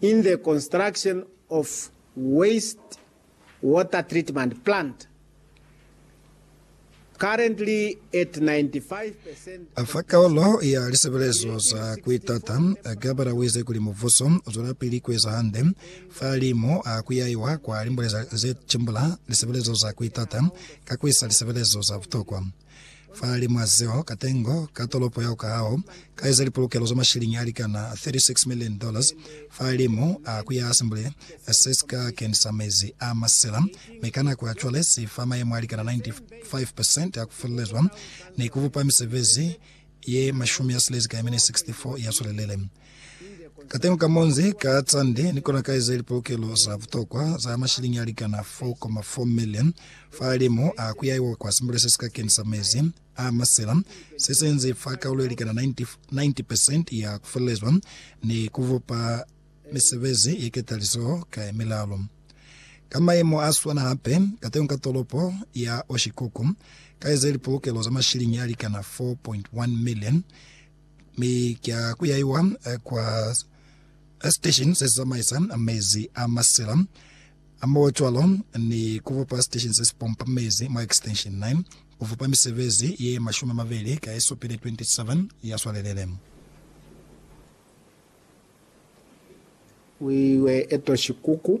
in the construction of waste water treatment plant, currently at 95 percent of Fa kaolo ya lisebelezo za ku itata, Gabara wize kuli mubuso uzwelapili kueza hande fa li mo a kuyaiwa kwa limbuleza ze cimbula lisebelezo za ku itata ka kuisa lisebelezo za butokwa. Fa limu a zeo, katengo ka tolopo yao kahao ka eza lipolokelo za mashilingi a likana 36 million dollars fa limu a ku ya Assembly se si ka kenisa mezi a masela, mi ka nako ya cwale si fa mayemo a likana 95% a ku felelezwa ni ku bupa misebezi ye mashumi a silezi ka ye mene 64 ya swelelele. Kateñi ka munzi, ka tsande, ni kona ka eza lipolokelo za butokwa za mashilingi a likana 4,4 million fa limu a ku yaiwa kwa simbule se si ka kenisa mezi a masela, se si inzi fa kaulo ye likana 90% ya ku felelezwa ni ku bupa misebezi ye ketalizo ka ye milalu. Ka maimu a swana hape, kateñi ka tolopo ya Oshikoku, ka eza lipolokelo za mashilingi a likana 4.1 million, Mi kya kuyaiwa kwa station sesizamaisa mezi a masila a mo cwalo ni kubupa station sesipompa mezi mwa extension 9 kufupa misebezi ye mashumi amabeli ka yesupile 27 ya swalelele. Wiwe eto shikuku.